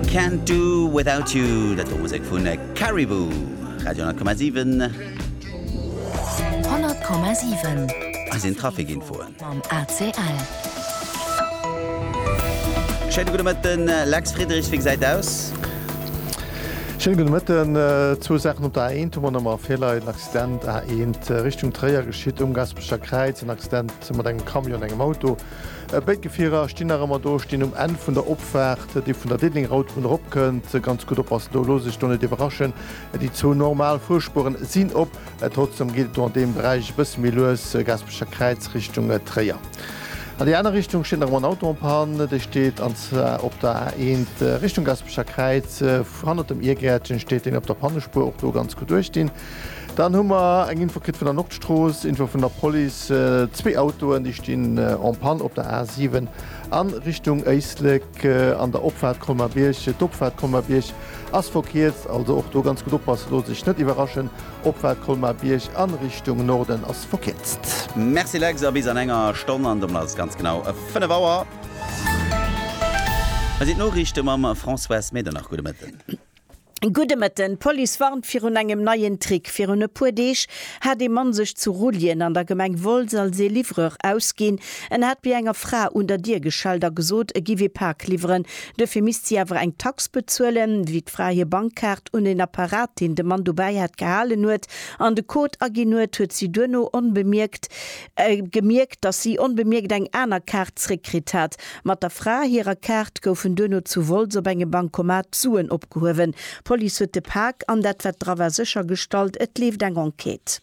Can't do without you, dat wor Musek vu Caribou, Radio 10,7. Hei sinn d'Trafikinfoen mam ACL. Schéine gudde Mëtten, den Lex Friedrichs, wéi gesäit et aus? Schéine gudde Mëtten, zwou Saachen op der A1 hu mer nach emol virleien. Accident A1 Richtung Tréier geschitt um Gasperecher Kräiz, en Accident mat engem Camion an engem Auto. Béid Gefierer stinn nach ëmmer do, stinn um Enn vun der Opfaart, déi vun der Diddlingen-Autobunn erop kënnt. Ganz gutt oppassen do, loosst Iech do net iwwerraschen. Déi zwou normal Fuerspueren sinn op, trotzdeem geet et do an deem Beräich e bësse méi lues, Gaasperecher Kräiz Richtung Tréier. An déi aner Richtung steet nach ëmmer en Auto en panne, dee steet an zwar op der A1 Richtung Gaasperecher Kräiz, hannert dem Irgäertchen steet deen op der Pannespuer. Och do ganz gutt uecht dinn. Dann hu mer eng Info kritt vun der Nordstrooss, Info vun der Police, zwee Autoen, déi stinn en panne op der A7 a Richtung Éislek an der Opfaart Colmar-Bierg. D'Opfaart Colmar-Bierg ass verkierzt, also och do ganz gutt oppassen, loosst Iech net iwwerraschen, Opfaart Colmar-Bierg a Richtung Norden ass verkierzt. Merci Lex, a bis an enger Stonn, an domat ass et ganz genau 5 Auer. Hei sinn d'Noriichte mam Françoise Medernach. Gudde Mëtten. Gudde Mëtten, d'Police warnt virun engem neien Trick. Virun e puer Deeg hat ee Mann sech zu Rulljen an der Gemeng Wolz als ee Livreur ausginn. En hat bei enger Fra un der Dier geschellt a gesot, e giff ee Pak liwweren, duerfir misst si awer eng Tax bezuelen. Wéi d'Fra hir Bankkaart un en Apparat, deen de Mann dobäi hat, gehalen huet an de Code aginn huet, huet si duerno onbemierkt gemierkt, datt si onbemierkt eng aner Kaart zréckkritt hat. Mat der Fra hirer Kaart goufen duerno zu Wolz op engem Bancomat Suen opgehuewen. D'Police huet de Pak an dat, wat dra war, séchergestallt. Et leeft eng Enquête.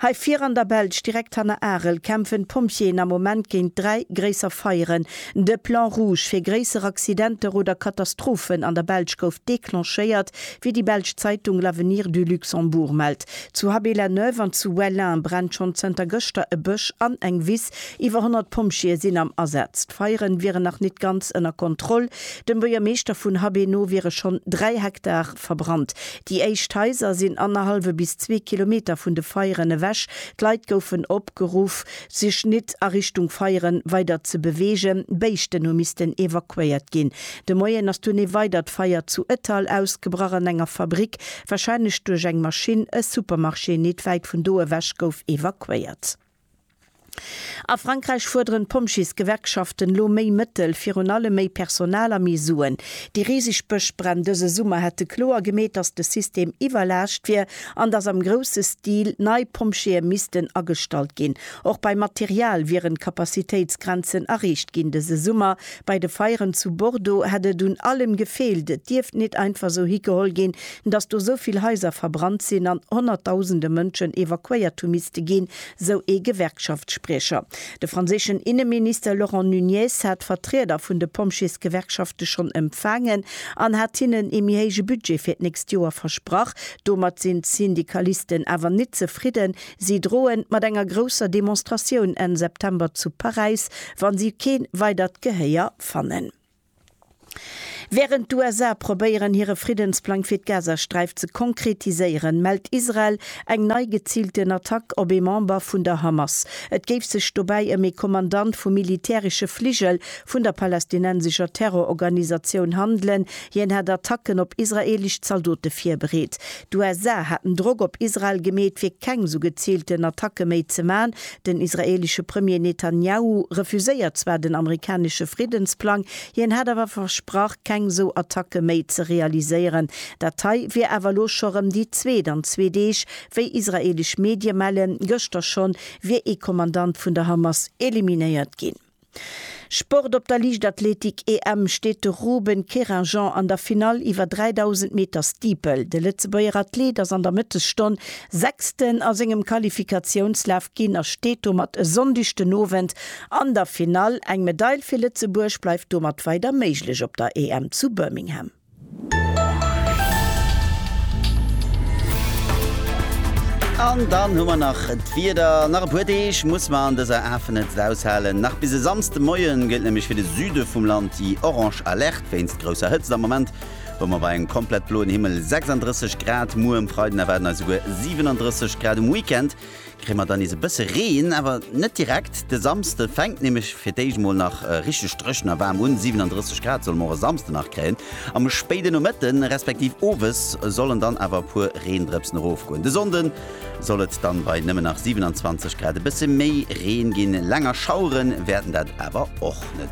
Hei vir an der Belsch, direkt hanner Arel, kämpfen d'Pompjeeën am Moment géint dräi gréisser Feieren. De Plan rouge fir gréisser Accidenter oder Katastrophen an der Belsch gouf declenchéiert. Wéi déi belsch Zeitung L'Avenir du Luxembourg mellt, zu Haby-la-Neuve an zu Wellin brennt schonn zënter gëschter e Bësch an eng Wiss. Iwwer 100 Pompjeeë sinn am Asaz. D'Feiere wieren nach nit ganz ënner Kontroll. Dem Buergermeeschter vun Haby no wiere schonn 3 Hektar verbrannt. Déi éischt Haiser sinn annerhallwe bis zwee Kilometer vun de Feieren ewech. D'Leit goufen opgeruff, sech nit a Richtung Feieren weider ze beweegen. Béischten hu missten evakuéiert ginn. De Moien ass dunn ee weidert Feier zu Ettal ausgebrach an enger Fabrick, warscheinlech duerch eng Maschinn. E Supermarché nit wäit vun do ewech gouf evakuéiert. A Frankräich fuerderen d'Pompjeesgewerkschaften elo méi Mëttel, virun allem méi Personal a méi Suen. Déi riseg Bëschbränn dëse Summer hätte kloer gemeet, datt de System iwwerlaascht wier. an dass am grousse Stil nei Pompjeeë missten agestallt ginn. Och beim Material wieren d'Capacitéitsgrenzen erreecht ginn. Dëse Summer bei de Feieren zu Bordeaux hätt et un allem gefeelt. Et dierft nit einfach esou higeholl ginn, dass do esou vill Haiser verbrannt sinn an Honnertdausende Mënschen evakuéiert hu misste ginn, sou ee Gewerkschaftsspriecher. De franséischen Inneminister Laurent Nunez hat d'Vertrieder vun de Pompjeesgewerkschafte schonn empfaangen an hat hinnen ee méi héije Budget fir d'nächst Joer versprach. Domat sinn d'Syndikalisten awer nit zefridden. Si droen mat enger grousser Demonstratioun Enn September zu Paräis, wa si kee weidert Gehéier fannen. Wärend d'USA probéieren hire Friddensplang fir d'Gazasträif ze konkretiséieren, mellt Israel eng nei geziilten Attack op ee Member vun der Hamas. Et géif sech dobäi ëm ee Kommandant vum militäresche Fligel vun der palästinensescher Terrororganisatioun handelen. Hien hätt Attacken op israeelesch Zaldote virbereet. D'USA haten Drock op Israel gemeet, fir keng esou geziilten Attacke méi ze man, Den israeelesche Premier Netanjahu refuséiert zwar den amerikanesche Friddensplang, hien hätt awer versprach, keng sou Attacke méi ze realiséieren. Dat hei wier awer elo scho rëm déi zweet an zwee Deeg. Wéi israeelesch Medie mellen, gëschter schonn wier ee Kommandant vun der Hamas eliminéiert ginn. Sport Op der Liichtathletik-EM steet de Ruben Querinjean an der Finall iwwer 3.000 Meter Steeple. De Lëtzebuerger Athlet ass an der Mëttesstonn Sechsten a sengem Qualifikatiounslaf ginn a steet domat e Sonndeg den Owend an der Finall. Eng Medail fir Lëtzebuerg bleift domat weider méiglech op der EM zu Birmingham. An dann hu mer nach d'Wieder. Nach e puer Deeg muss mer an dëser Afenetzt aushalen. Nach bis e Samsdemoie gëllt nämlech fir de Süde vum Land déi orange Alerte wéinst grousser Hëtzt. Am Moment hu mer bei engem komplett bloen Himmel 36 Grad. Muer um Freiden erwaarden eis esouguer 37 Grad. Um Weekend Kréie mer dann nees e bësse Reen, awer net direkt. De Samsde fänkt nämlech fir d'éischt mol nach richteg dréchen a waarm un, 37 Grad solle mer och e Samsde nach kréien. Am spéide Nomëtte respektiv Owes sollen dann awer e puer Reendrëpsen erofgoen. De Sonnde soll et dann bei nëmmen nach 27 Grad e bësse méi Reen ginn, länger Schauere wäerten dat awer och net.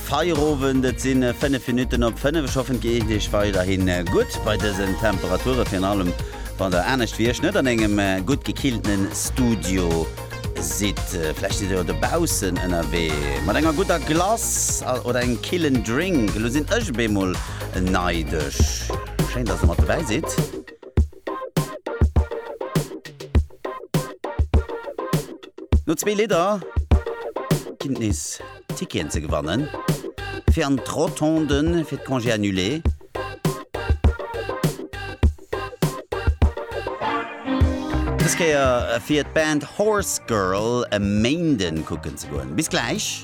Feierowend, et sinn 5 Minutten op 5. Ech hoffen et geet iech weiderhi gutt bei dësen Temperature, virun allem wann der anescht wéi ech net an engem gutt gekilltene Studio sidd. Vläicht sidd der jo dobaussen ënnerwee mat enger gudder Glace oder engem killen Drink. Elo sinn ech op eemol neidesch. Schéin dass der mat dobäi sidd. No zwee Lidder ginn et nees Ticketen ze gewannen fir an d'Rotonde fir d'Congés annulés. Dës Kéier fir d'Band Horse Girl e Méinden kucken ze goen. Bis gläich!